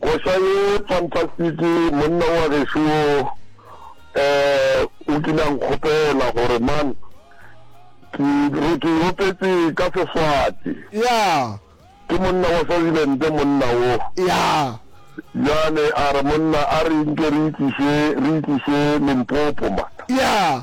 Koša ye fantastic monna wa gešo wo eh o kile a nkgopela gore man ke re ke opetse ka seswati yeah ke monna wa Swaziland monna wo yeah jale a re monna a re nke re itliše re itliše Limpopo man yeah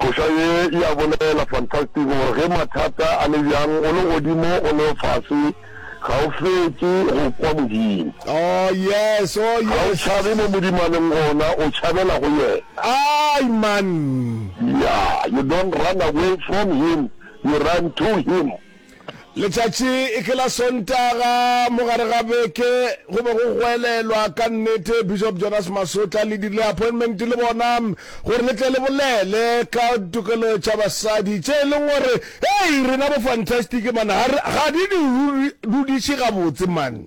Koša ye e a bolela, fantastic, gore ge mathata a le bjang, o le godimo, o le fase, ga o fetše go kwa Modimo. Oh, yes, oh, yes. Ga o tšhabe mo Modimo a leng gona, o tšhabela go Yena. Ai, man. Yeah, you don't run away from Him, you run to Him. Letšatši e ke la Sontaga mo gare ga beke go be go goelelwa ka nnete. Bishop Jonas Masotla le dirile appointment le bona gore le tle le bolele ka tokelo tša basadi tše e leng gore hei rena bo fantastic man ga di di dudiše gabotse man.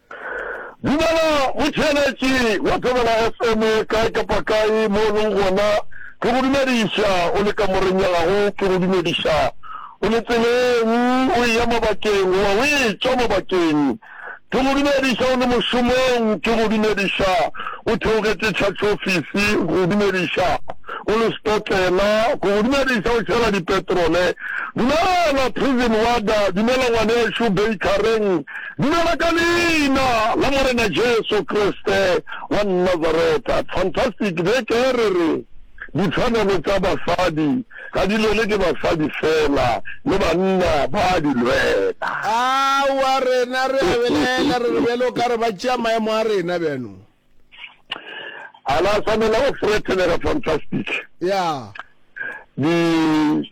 Dumela motšheletši wa Thobela FM kae kapa kae mo o leng gona, ke go dumediša o le kamoreng ya gago, ke go dumediša o le tseleng o eya mabakeng goba o etšwa mabakeng, ke go dumediša o le mošomong, ke go dumediša o theogetše tšhatšofisi, ke go dumediša o le sepotlela, ke go dumediša o tšhela dipetrole. Dumela Prison Warder, dumela ngwanešu Bakereng. Dumela ka Leina la Morena Jesu Kriste wa Nazareta. Fantastic, be ke re re ditshwanelo tša basadi ga di lwele ke basadi fela, le banna ba a di lwela. Aowa, rena re a belaela, re re bjalo o ka re ba tšea maemo a rena bjano. a la tshwanela go threatenega fantastic ya di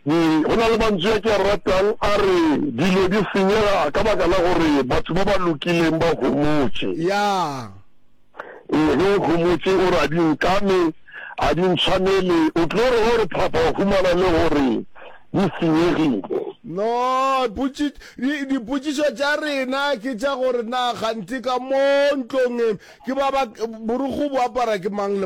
di go na le mantswe a ke a ratang a re dilo di senyega ka baka la gore batho ba ba lokileng ba homotse ya ee ge o homotse o re a di nkame a di ntshwanele o tlo re gore phapha o humana le gore di senyegile. No, potši, di, dipotšišo tša rena ke tša gore na kganthe ka mo ntlong e, ke ba ba, borukhu bo apara ke mang le.